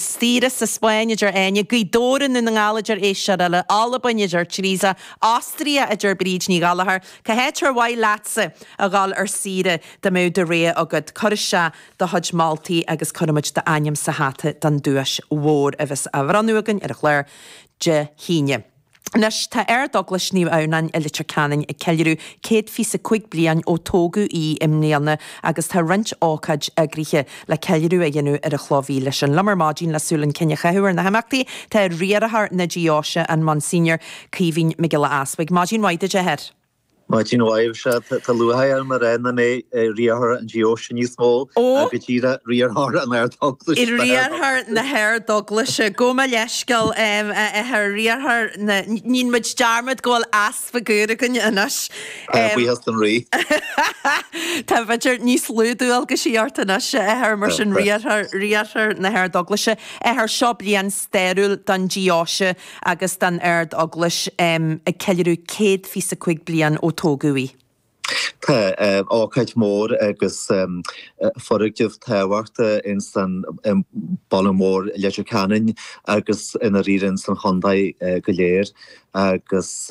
Saoire sa Spáinn a deir Áine, Gaoth Dobhair i nDún na nGall a deir éisteoir eile, Albain a deir Teresa, Austria a deir Bríd Ní Ghallachair. Cá háit ar mhaith leatsa a dhul ar saoire dá mbeadh do rogha agat? Cuir isteach do chuid moltaí agus cuirfidh muid d'ainm sa hata don duais mhór a bheas á bhronnadh againn ar an gclár Dé hAoine. Anois tá Ardeaglais Naomh Adhamhnáin i Leitir Ceanainn ag ceiliúradh céad fiche is a cúig bliain ó tógadh í i mbliana agus tá roinnt ócáid eagraithe le ceiliúradh a dhéanamh ar an chloch mhíle sin. Liom ar maidin le súil chun cinn a chaitheamh ar na himeachtaí tá riarthóir na deoise, an Monsignor Caoimhín Mac Giolla Easbuig. Maidin mhaith duit a Athair. Maidin mhaith, Michelle, tá lúcháir orm a rá nach mé riarthóir an deoise níos mó Ó! ach go díreach riarthóir na hArdeaglaise. Riarthóir na hArdeaglaise. Gabh mo leithscéal, a Athair, riarthóir na, níonn muid dearmad go bhfuil easpag úr againn anois. Tá, buíochas don Rí. Tá, b'fhéidir, níos lú dualgaisí ort anois, a Athair, mar sin riarthóir, riarthóir na hArdeaglaise. A Athair, seo bliain stairiúil don deoise, agus don Ardeaglais ag ceiliúradh céad fiche is a cúig bliain ó tógadh í. Tá ócáid mór agus foirgneamh tábhachtach ins an bhaile mór Leitir Ceanainn agus i ndáiríre ins an chontae go léir agus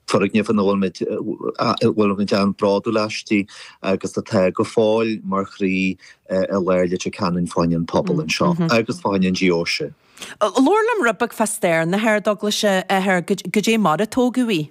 foirgneamh ina bhfuil muid bhfuil muid an-bhródúil aisti agus atá go fóill mar chroí i lár Leitir Ceanainn fá choinne an pobal anseo agus fá choinne an deoise. Labhair liom rud beag fá stair na hArdeaglaise a Athair, goidé mar a tógadh í.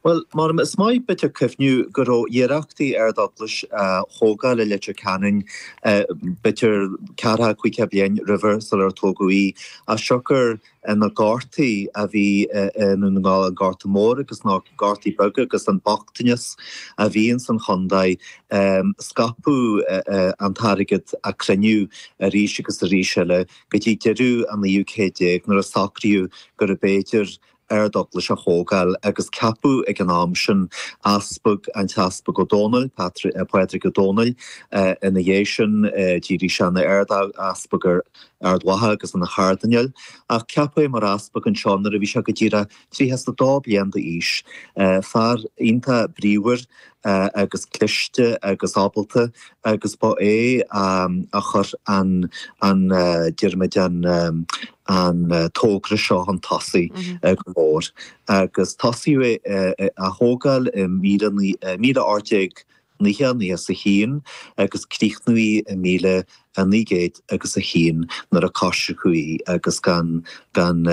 Bhuel, mar is maith b'fhéidir cuimhniú go raibh iarrachtaí Ardeaglais a thógáil i Leitir Ceanainn b'fhéidir ceathracha, caoga bliain roimhe sular tógadh í, as siocair na gortaí a bhí i nDún na nGall, an Gorta Mór agus na gortaí beaga agus an bochtanas a bhí ins an chontae. Scaipeadh an t-airgead a cruinníodh arís agus arís eile. go dtí deireadh an naoú céad déag nuair a socraíodh gurbh fhéidir ardeaglais a thógáil agus ceapadh ag an am sin easpag, an tEaspag Ó Dónaill, Pádraig Ó Dónaill Ina dhiaidh sin d'éirigh sé ina Ard-Easpag ar Ard Mhacha agus ina Chardinéal ach ceapadh é mar easpag anseo nuair a bhí sé go díreach tríocha is a dó bliain d'aois Fear iontach bríomhar agus cliste agus ábalta agus ba é a chuir an an déarfaidh muid an an tógra seo chun tosaigh go mór agus tosaíodh é a thógáil i míle, míle ocht déag nócha, nócha is a haon agus críochnaíodh í i míle naoi gcéad agus a haon nuair a coisriceadh í agus gan gan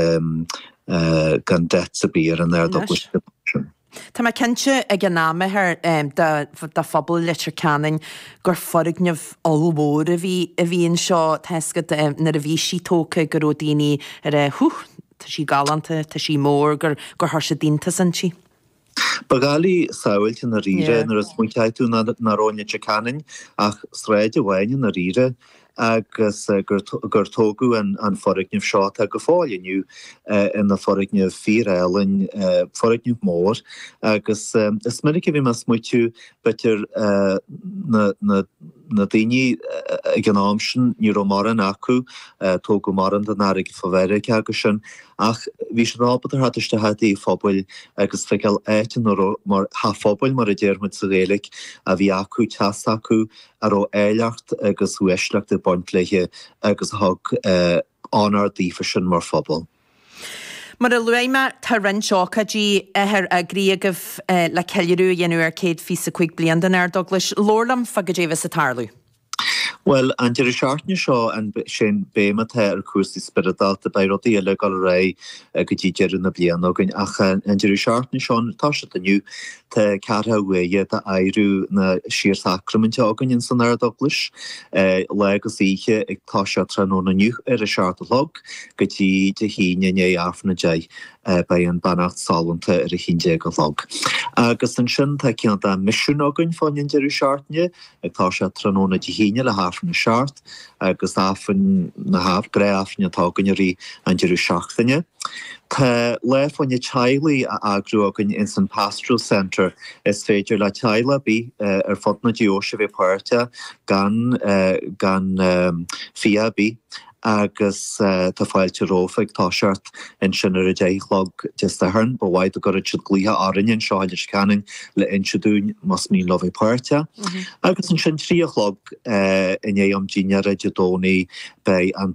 gan debt ar bith ar an Ardeaglais ansin. Tá mé cinnte, ag an am, a Athair, do phobal Leitir Ceanainn, gur foirgneamh ollmhór a bhí anseo tá a fhios agat nuair a bhí sí tógtha go raibh daoine ag ráit huth, tá sí galánta, tá sí mór, gur chuir siad iontas inti. Ba dhoiligh samhailt i ndáiríre nuair a smaointeochaidh tú nach raibh i Leitir Ceanainn ach sráid amháin i ndáiríre agus gur tógadh an foirgneamh seo, atá go fóill inniu ina foirgneamh fíor-álainn, foirgneamh mór, agus is minic a bhím ag smaoitiú, b'fhéidir na daoine ag an am sin, ní raibh mórán acu, tógadh mórán den airgead fá Mheiriceá agus sin, ach bhí siad ábalta theacht isteach i dtigh an phobail agus feiceáil áit ina raibh, mar, teach an phobail mar a déarfaimid sa Ghaeilge, a bhí acu, teas acu, a raibh áilleacht agus uaisleacht ag baint léi agus a thug onóir daofa sin mar phobal. Mar a luaigh mé, tá roinnt ócáidí eagraithe agaibh le ceiliúradh a dhéanamh ar céad fiche is a cúig bliain den Ardeaglais. Labhair liom fá cad é a bheas ag tarlú. Bhuel, an deireadh seachtaine seo, an, sé an béim atá ar cúrsaí spioradálta, beidh rudaí eile ag dul ar aghaidh go dtí deireadh na bliana againn ach an deireadh seachtaine seo, ag toiseacht inniu, Tá ceathracha uair d'adhradh na síor-shacraiminte againn ins an Ard-Eaglais, lá agus oíche ag toiseacht tráthnóna inniu ar a seacht a chlog go dtí Dé hAoine i ndiaidh Aifreann a deich beidh an Beannacht Sollúnta ar a haon déag a chlog. Agus ansin tá cineál de mhisiún againn fán deireadh seachtaine ag toiseacht tráthnóna Dé hAoine le hAifreann a seacht agus Aifreann na, ah, gnáth-Aifrinn atá againn i rith an deireadh seachtaine. Tá lá fá choinne teaghlaigh á eagrú againn ins an Pastoral Centre. Is féidir le teaghlaigh ar bith ar fud na deoise bheith páirteach gan gan fee ar bith. agus tá fáilte romhaibh ag toiseacht ansin ar a deich a chlog Dé Sathairn. Ba mhaith dá gcuirfeadh siad glaoch orainn anseo i Leitir Ceanainn le inse dúinn más mian leo bheith páirteach. Agus ansin trí a chlog i ndiaidh am dinnéara Dé Domhnaigh beidh an